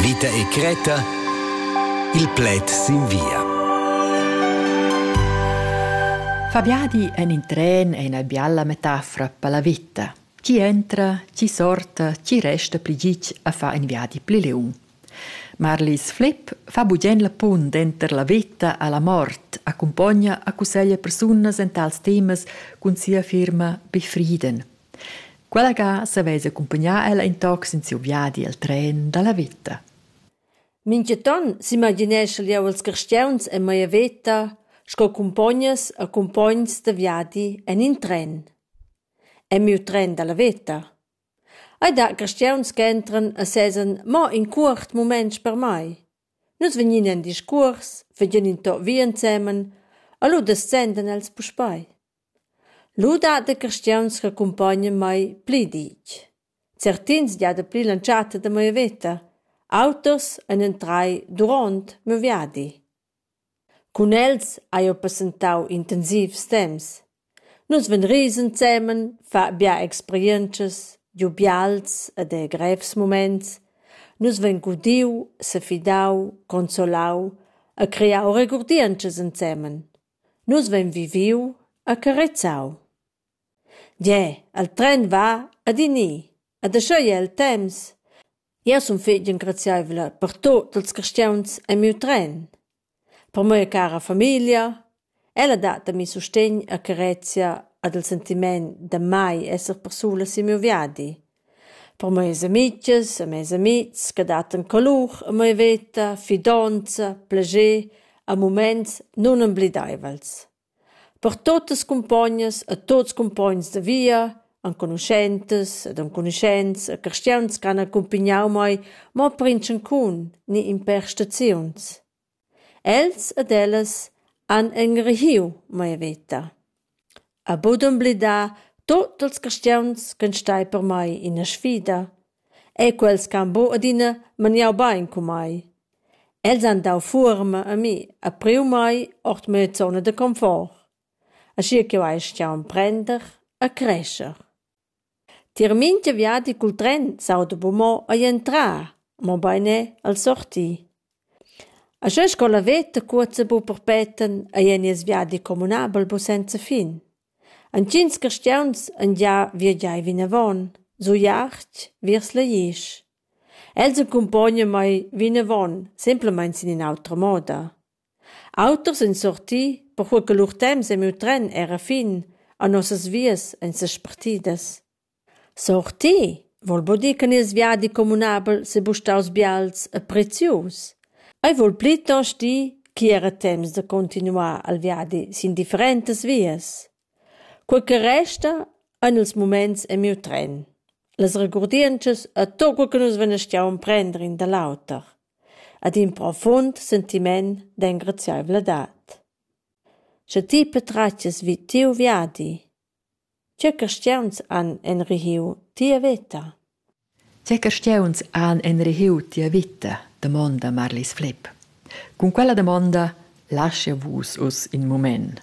Vita e Creta Il pled sin via Fabiadi en in tren è ina bialla metafora per la vita. Chi entra, chi sorta, chi resta pli gitg a far in viadi pli liung. Marlis Flipp fa bugen la pun denter la veta a la mort, accumpogna a cusseglia persunas en tals temas cun sia firma Befrieden – Quella ga savess accumpagnar ella in toc sin siu viadi el tren dalla veta. Mintgaton s'imagineschel jeu els carstgauns en mia veta sco cumpognas e cumpogns da viadi en in tren. En miu tren dalla veta. Ei dat carstgauns che entran e sesan mo in cuort mument per mei. Nus vegnin en discuors, vegin in tot via ensemen e lu descendan els puspei. Lu dat da carstgauns ch'accumpognan mei pli ditg. Certins gia dapli l'entschatta da mia veta. Auters ein entrai duront miu viadi. Cun els hai jeu passentau intensivs temps. Nus vein ris ensemen, fa bia experientschas, giu bials ed era grevs muments. Nus vein gudiu, sefidau, consolau e creau regurdientschas ensemen. Nus vein viviu e carezau. Gie, il tren va ad in ni, ed aschia ei el temps. Jeu sun fetg engraziaivla per tut ils carstgauns en miu tren. Per mia cara famiglia. Ella dat a mi sustegn e carezia ed il sentiment da mai esser persulas sin miu viadi. Per meis amitgs e meis amihs che dattan colur a mia veta, fidonza, plascher a mumaints nunembleidaivels. Per tuottas cumpognas e tuots cumpogns da via, enconuschentas ed enconuschents e carstiauns ch'han accumpignau mei mo per intschancun ni impè staziuns. Els ed ellas han engregiu mia veta, ha buc d'emblidar tut ils carstgauns ch'ein stai per mei ina sfida e quels che han buc adina maniau bein cun mei. Els han dau fuorma a mi e priu mei ord mia zona da confort, aschia ch'jeu hai astgau emprender e crescher. Tier mintga viadi cul tren s'auda buca mo ei entrar, mobein er el sortir. Aschia sco la veta cuozza buca perpeten ei ei nies viadi communabel buca senza fin. Entgins carstgauns han gia viagiai vinavon, giu Jachť viers Laisch. Els accumpognan mei vinavon, semplamein sin in'autra moda. Auters ein sorti, perquei che lur temps e miu tren era fin, a nossas vias ein sespartidas. Sorti? Vul buca dir che nies viadi communabel sebuca staus bials e prezius. Ei vul plitost dir ch'igl era temps da continuar al viadi sin differentas vias. Quei che resta ein ils muments e miu tren. Las regurdientschas a tot quei che nus vegneschian prender in da l'auter. Ad in profund sentiment d'engraziaivladad. Sche ti patratgias vid tiu viadi, tgei carstiauns han enrihiu tia veta? Tgei carstiauns han enrihiu tia vita? damonda Marlis Flepp. Cun quella damonda lascha vus uss in mument.